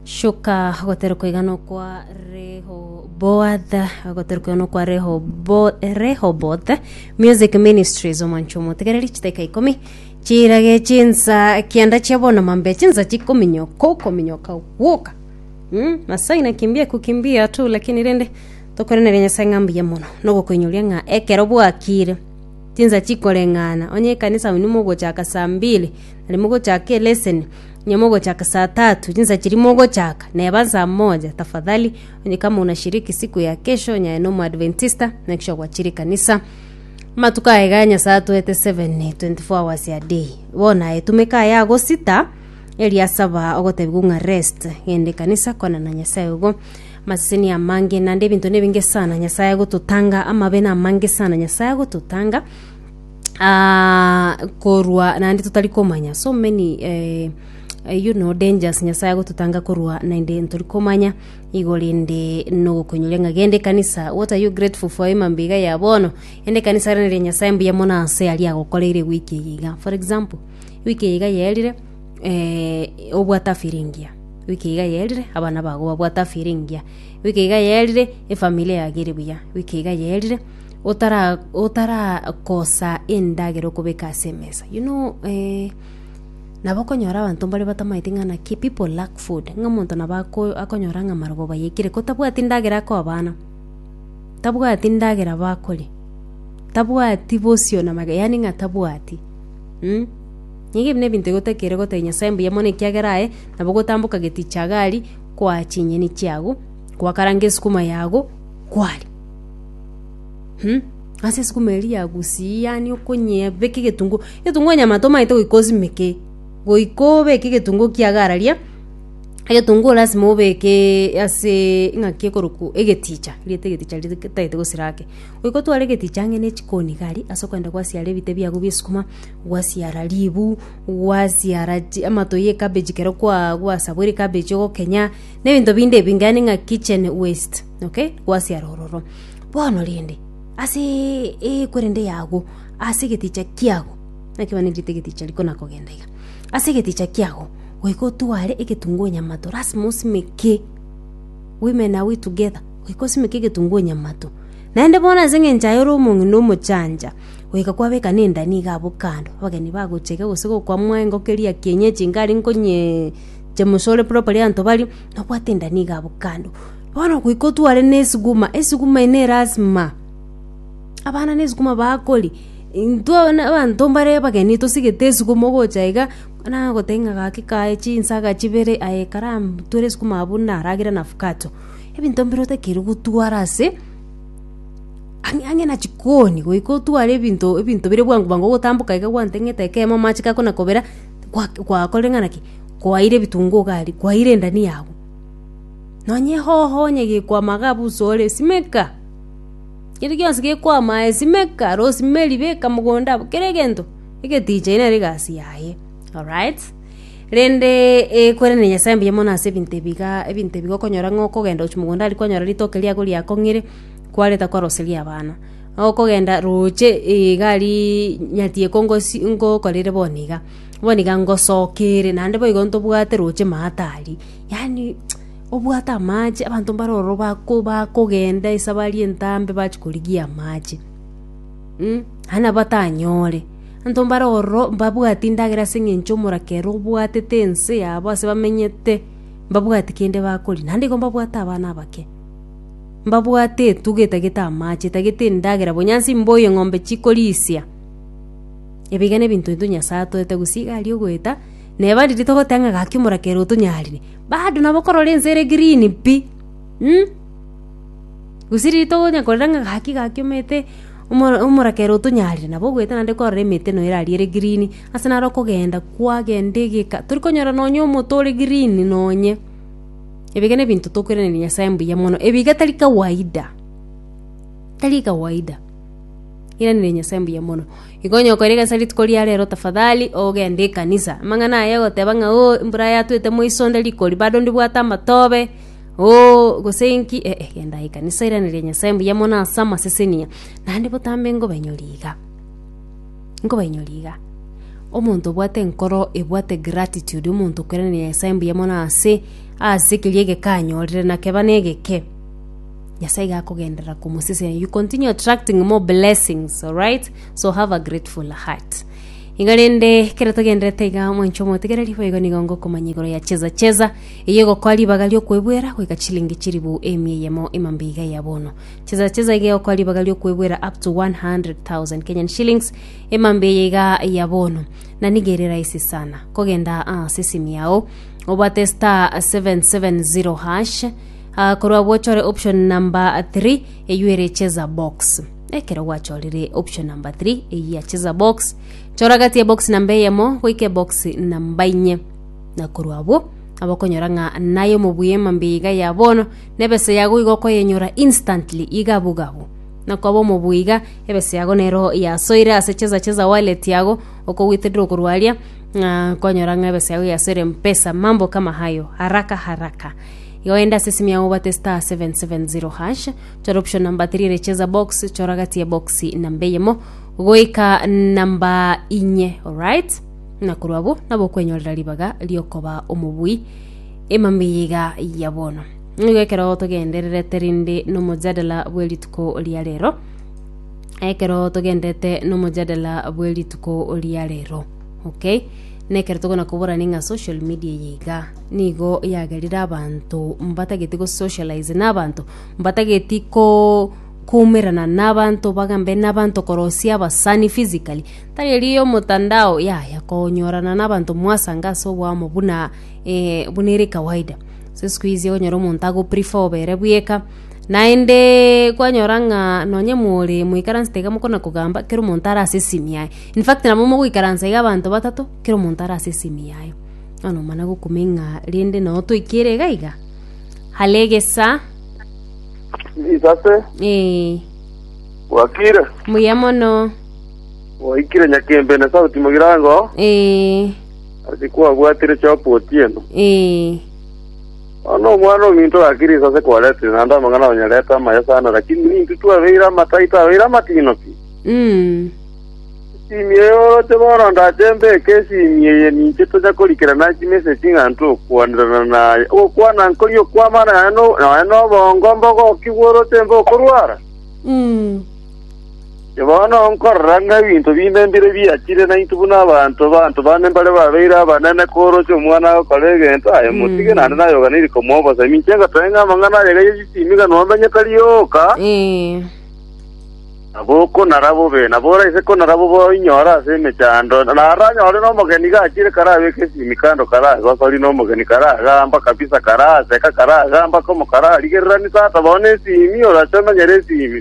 Shuka goterekwa igana okwa Rehoboath goterekwa igana okwa Rehobo- Rehoboth Music Ministries omwancho omotegereri chiteka ikomi chirage chinsa kianda chia bono mambe chinsa chikominyoka okominyoka gwoka mm? Nyasaye na kimbia ku kimbia tu lakini rende tokorenere Nyasaye ng'a mbuya mono nogokoinyoria ng'a ekero bwakire Chinsa chikoreng'ana, onye ekanisa abwo nimogochaka saa mbili, nari mogochake eleseni, onye mogochaka saa tatu, chinsa chiria mogochaka, neba saa moja, tafadhali, onye kama unashiriki siku ya kesho, onye aye nomoadventista, make sure gwachire ekanisa. Amatuko aye ga Nyasaye atoete 7, 24 hours a day. Bono aye tumeka aye agosita, erio asaba ogotebi kung'a rest, genda ekanisa, kwana na Nyasaye igo. Amaseseni amange naende ebinto nebinge sana Nyasae agototanga, amabe namange sana Nyasae agototanga ah, korwa naende totari komanya so many eh, eh, you know dangers Nyasae agototanga korwa naende ntori komanya igo rende nogokonyoria ng'a gende kanisa what are you grateful for emambe iga ya bono ende kanisa rende ria Nyasae mbuya mono ase aria agokoreire wiki eye iga for example wiki eye iga yerire eh, obwata firingia wiki iga yerire abana bago babwata firingia wiki iga yerire efamilia yage ere buya wiki iga yerire otara otarakosa endagera okobeka ase emesa you know eh, nabo konyora abanto mbare batamaeti ng'a naki people lack food ng'a omonto nabo ako- akonyora ng'a amarogo bayekire ko tabwati ndagera akoa abana tabwati ndagera bakoria tabwati bosio na maga yaani ng'a tabwati mm? Nigo ebi nebinto egotakeire gotebia Nyasae mbuya mono ekiagera aye nabo gotamboka geti chia gari koa chinyeni chiago koakaranga esukuma yago kwari um ase esukuma eri yagusiyi yaani okonyea beka egetunguo egetunguo nyamata omanyete goika osimeke goika obeke egetunguo kiago araria egetunguo lasima obekeeee aseee ng'aki ekorokwa egeticha erieta egeticha riria ritagete gosira ake goika otware egeticha ang'e ne echiko niga aria ase okogenda gwasiara ebite biago bia esukuma. Gwasiara ribu, gwasiara amato y'ekabeji ekero gwasaboire ekabeji ogokenya, na ebinto binde ebinge yaani ng'a kitchen waste, okay? Gwasiara ororo. Bono rende, ase ekwerende yago, ase egeticha kiago, naki abana nigo egeticha riko nakogenda iga, ase egeticha kiago, goika otware egetunguo nyamato, lasima osimeke, women are we together? Goika osimeke egetunguo nyamato. Naende bono ase eng'encho aye ore omong'ina omochancha. Goika kwabeka nenda nigo abwo kando, abageni bagochega gose gokwamwa engoko eria ya kienyeji nigo aria nkonye chemusa ore properly abanto baria, nabwate enda nigo abwo kando. Bono goika otware na esuguma, esuguma eye ne lasima, abana ne esuguma bakori, intwe abana abanto mbare abageni tosigete esuguma ogocha iga, nang'ana goteba ng'a gaki kaye chinsaga chibere aye karam twere esuguma abwo naragere na avocado. Ebinto mbire otakeire gotwara ase. Ang'e ang'e na chikoni goika otware ebinto ebinto bire bwango bwango ogotamboka iga gwanteng'ete ekeemo amache gako na kobera, gwa- gwakorire ng'a naki, kwaeire ebitunguu iga aria, kwaeire endania agwo. Nonye hoho onye gekwama iga busa ore, simeka, keri gionsi gekwama aye simeka, rosemary beka mogondo abwo, kera egento egeticha ere nere egasi yaye, alright. Rende eh, kwerene Nyasae mbuya mono ase ebinto ebiga ebinto ebiga okonyora ng'a okogenda gochia mogondo aria kwanyora ritoke riago riakong'ire kwareta kwaroseria abana. Okogenda roche eh, iga aria nyati ekongosi ngokorere bono iga, bono iga ngosoka ere naende boigo ntobwate roche maate aria. Yaani obwate amache abanto mbare ororo bako bakogenda esabari entambe bachia korigia amache. Nabatanyoore. Abanto mbare ororo mbabwati endagera ase engencho omoraka ere obwatete ense yabo ase bamenyete mbabwati kende bakori naende nigo mbabwate abana abake. Mbabwate etuga etagete amache etagete endagera bonya ase embou engombe chikorisia. Ebiga ne ebinto ebio Nyasaye atoete gose iga aria ogoeta na abande riria togoteba ng'a gaki omoraka ere otonyarire bado nabo okorora ense ere green pi. Gose rito onya korera ng'a gaki gaki omete omora omorakera otonyarire nabo ogoeta naende kwarora emete noyo erarie ere green, ase naro okogenda kwagenda egeka tori konyora nonya omote ore green nonye. Ebiga na ebinto tokoiraneria Nyasae mbuya mono, ebiga tari kawaida, tari kawaida. Iraneria Nyasae mbuya mono. Igo onya okoira egasi rituko ria rero tafadhali ogende ekanisa. Amang'ana aya ogoteba ng'a oo, embura yatwete moiso onde rikori bado ndibwate amatobe. Oo, gose inki eh, eh, gendai kanisa iraneria nyasae mbuya mono ase amasesenia naende botambe nkobainyori iga nkobainyori iga omonto obwate enkoro ebwate gratitude omonto okoiraneria nyasae mbuya mono ase ase keria egeka anyorire nakeba negeke nyasae iga akogenderera komosesenia you continue attracting more blessings alright so have a grateful heart iga rende ekero togenderete iga mwanche omotigereri boigo nigo ngokomanya igoro ya cheza cheza Eyio egokoa ribaga ri'okwebwera goika chilingi chilifu emia eyemo emambe iga eya bono. Chisesa chi'esa iga egokoa ribaga ri'okwebwera up to 100,000 Kenyan shillings emambe eye iga eya bono. Na nigo ere rahisi sana. Kogenda ase esimi yao, obwate star 770 hash, ah, korwa abwo ochore option number 3 eyio ere cheza box. Ekero gwachorire option number 3 eyio ya cheza box, chora gati ya box namba eyemo goika ebox namba inye. Na korwa abwo abakonyora ng'a naye omobuya emambia iga ya bono, na ebesa yago iga okoyenyora instantly, iga bobe abwo. Na koba omobuya iga, ebesa yago nero yasoire ase cheza cheza wallet yago, okogweterera okorwa aria, ng'a konyora ng'a ebesa yago yasoire mpesa mambo kama hayo, haraka haraka. Iga ogende ase esimi yago obwate star 770 hash, chora option number 3 ere cheza box, chora gati ya box namba eyemo, goika namba inye, alright? na korwa abwo nabokwenyorera ribaga riokoba omobui emambeiga ya bono. Nigo ekero togendererete rinde nomojadala bwe rituko ria rero ekero togenderete nomojadala bwe rituko ria rero okay nekero tokona koborani ng'a social media eye iga nigo yagerire abanto mbatageti go socialize na abanto mbatageti ko koumerana na abanto bagambe na abanto korosia abasani physically Tayari yomotandao yaya konyorana nabanto mwasange ase oboamo buna eh, buna ere kawaida. Ase isiko izi okonyora omonto agoprefer obe ere bweka, naende kwanyora ng'a nonye more moikaransete iga mokona kogamba, kera omonto are ase esimi yaye. In fact nabo mogoikaransa iga abanto batato, kera omonto are ase esimi yaye. Bono nomana gokumeng'a rende nao toikere iga iga. Hare egesa, Isase, eh, bwakire? mbuya mono. Oikire nyakembe na sauti mogirango, Ee, ase kwabwatire chopo otieno. ee, Bono omwana ominto gakire inse ase kwaretire, naende amang'ana onyarete amaya sana, lakini ninki twabeire amatai tabeire amatino ki? mm, Esimi eye oroche bono ndache mbeke esimi eye ninche tonya korikera naye chimeseji ng'a ntwe gokwanirana naye. Ogokwana nkori okwamana naye no- naye nobongo, mbogoki bworoche mbokorwara? mm, Bono nkorora ng'a ebinto binde mbire biachire, na intwe buna abanto, abanto bane mbare babeire abanene koorokia omwana agokora egento, aye motige naende nayoganeiri komobosemi. Inche ngotoe ng'a amang'ana aye gaiyo chisimi iga nomenye tari oka, Ee. na bokonara bobe, na bore ase konara bobe oinyore ase emechando, na aranyore nomogeni iga achire karabeke esimi kando karagosori, na omogeni karagamba kabisa, karaseka, karagamba komo, kararigererani tata bono esimi, orache omenyere esimi.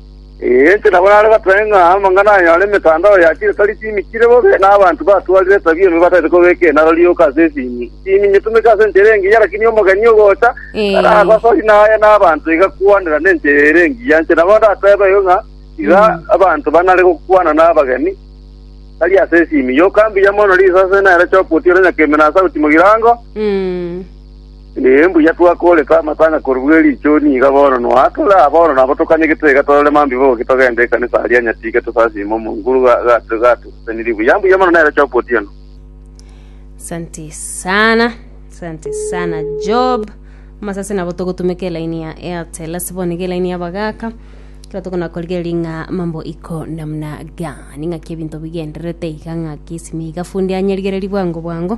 Inche nabo nare goteba ng'a amang'ana aya are emetandao ya chirikari chimikire bobe, na abanto batwarire esabi enwe batagete kobeka enaro rioka ase esimi. Esimi nyetumeke ase enchera engiya, lakini omogeni ogocha Ee. taragosori naye, na abanto igakwanera nenchera ere engiya. Inche nabo ndatebe igo ng'a iga abanto banare gokwana nabageni, tari ase esimi. Yoka mbuya mono risase nere choka otiora nyakembe na sauti mogirango. Mm. Ee, mbuya twakoorete amatang'a korwa e richuni iga bono, noa tore aa bono nabo tokanye gitaiga torore mambiboki togende ekanisa aria nyatiga tosasiime omonguru gatuseseniri buya. Mbuya mono nere Job Otieno. Asante sana, asante sana Job. Masasi nabo togotumeka elaini ya Airtel ase bono iga elaini yabagaka kero tokona korigereria ng'a mambo iko namna gani ng'aki ebinto bigendererete iga ng'aki esimi iga fundi anyerigererie bwango bwango